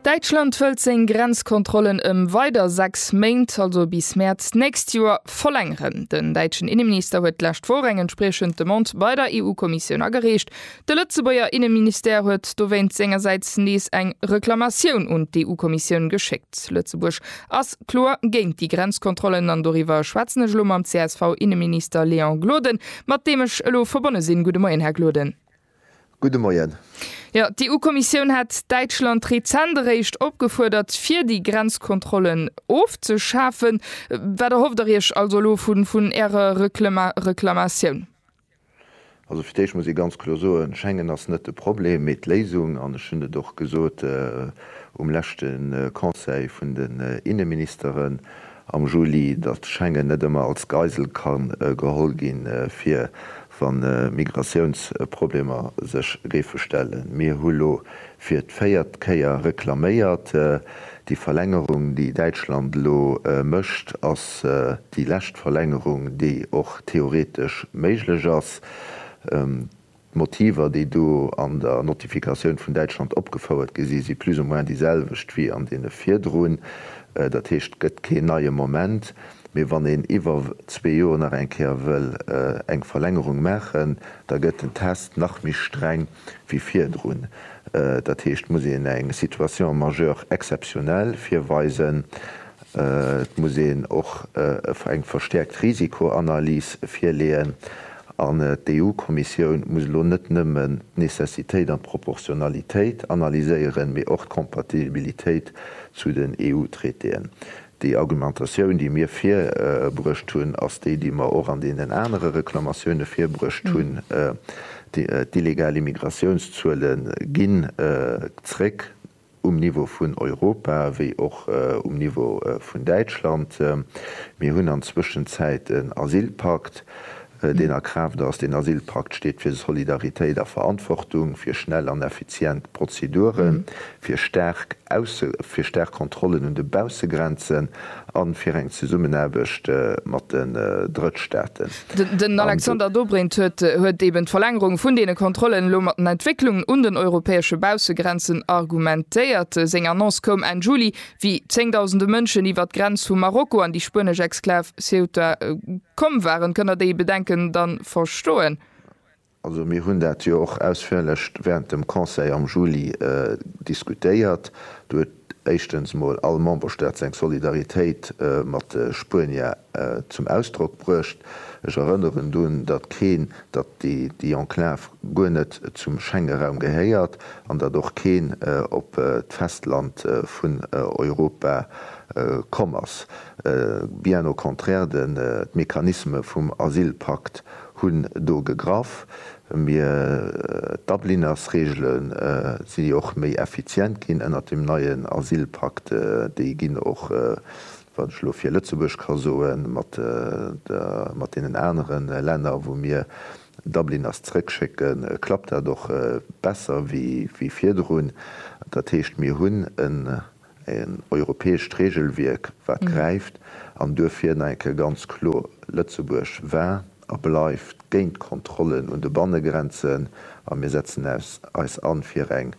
Däitschland wëllt seng Grenzkontrollen ëm weider 6 Méint, also bis Mäerz d'nächst Joer, verlängeren. Den däitschen Inneminister huet d'lescht Woch eng entspriechend Demande bei der EU-Kommissioun agereecht. De Lëtzebuerger Inneministère huet dowéinst sengersäits nees eng Reklamatioun un d'EU-Kommissioun geschéckt. Lëtzebuerg ass kloer géint déi Grenzkontrollen an doriwwer schwätzen ech elo mam CSV-Inneminister Léon Gloden, mat deem ech elo verbonne sinn. Gudde Moien, Här Gloden. Gudde Moien. Jo, d'EU-Kommissioun hat Däitschland rezent eréischt opgefuerdert, fir déi Grenzkontrollen ofzeschafen. Wat erhofft Der Iech also elo vun Ärer Reklamatioun? Also fir d'Éischt muss ee ganz kloer soen, Schengen ass net de Problem, mee d'Léisung. An ech hunn et och gesot um leschte Conseil vun den Inneministeren. am Juli, datt Schengen net ëmmer als Geisel ka geholl ginn, fir wa Migratiounsproblemer sech géife stellen. Mir hu lo fir d'véiert Kéier reklaméiert. Déi Verlängerung, déi Däitschland lo mécht, ass déi lescht Verlängerung, déi och theoretesch méiglech ass. D'Motiver, déi do an der Notifikatioun vun Däitschland opgefouert gi sinn, si plus ou moins déi selwecht wéi an deene virdrun. Dat heescht, et gëtt keen neie Moment. Mee wann een iwwer zwee Joer nach eng Kéier wëll eng Verlängerung maachen, da gëtt den Test nach méi streng wéi virdrun. Dat heescht, et muss een eng Situation majeure exceptionnelle virweisen. Et muss een och eng verstäerkt Risikoanalys virleeën an d'EU-Kommissioun muss elo net nëmmen d'Necessitéit an d'Proportionalitéit analyséieren, mee och d'Compatibilitéit zu den EU-Traitéen. Déi Argumentatioun, déi mir virbruecht hunn, ass déi, déi mer och an deenen anere Reklamatioune virbruecht hunn. D'illegal Immigratiounszuele gi zréck. um Niveau vun Europa wéi och um Niveau vun Däitschland. Mir hunn an Zwëschenzäit en Asylpakt, deen a Kraaft ass. Deen Asylpakt steet fir Solidaritéit a Verantwortung, fir schnell an effizient Prozeduren, fir staark Ausse, fir staark Kontrollen un de Baussegrenzen an fir eng Zesummenaarbecht mat den Drëttstaaten. Den Alexander Dobrindt huet eben d'Verlängerung vun deene Kontrollen elo mat den Entwécklungen un den europäesche Baussegrenzen argumentéiert. Seng Annonce koum Enn Juli, wéi zéngdausende Mënschen iwwert d'Grenz vu Marokko an déi spuenesch Exklav Ceuta komm waren. Kënnt Der déi Bedenken da verstoen? Also mir hunn dat jo och ausführlech während dem Conseil am Juli diskutéiert. Do huet éischtens mol all Memberstaat seng Solidaritéit mat de Spuenier zum Ausdrock bruecht. Ech erënneren drun, datt keen, datt déi Enclave guer net zum Schengenraum gehéiert an datt och keen op d'Festland vun Europa komm ass, bien au contraire, de Mechanisme vum Asylpakt hunn do gegraff, mir d'Dublinnersregelen si och méi effizient ginn ënnert dem neien Asylpakt, déi ginn och, wann ech elo fir Lëtzebuerg ka soen, mat mat deenen anere Länner wou mir Dublinners zrëckschécken, klappt dat och besser wéi virdrun. Dat heescht, mir hunn en en europäescht Regelwierk wat gräift, an duerfir nach eng Kéier ganz kloer, Lëtzebuerg war a bleift géint d'Kontrollen un de Bannegrenzen a mir setzen eis an fir eng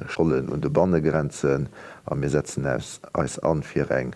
Schollen un de Bannegrenzen a mir setzen eis an fir eng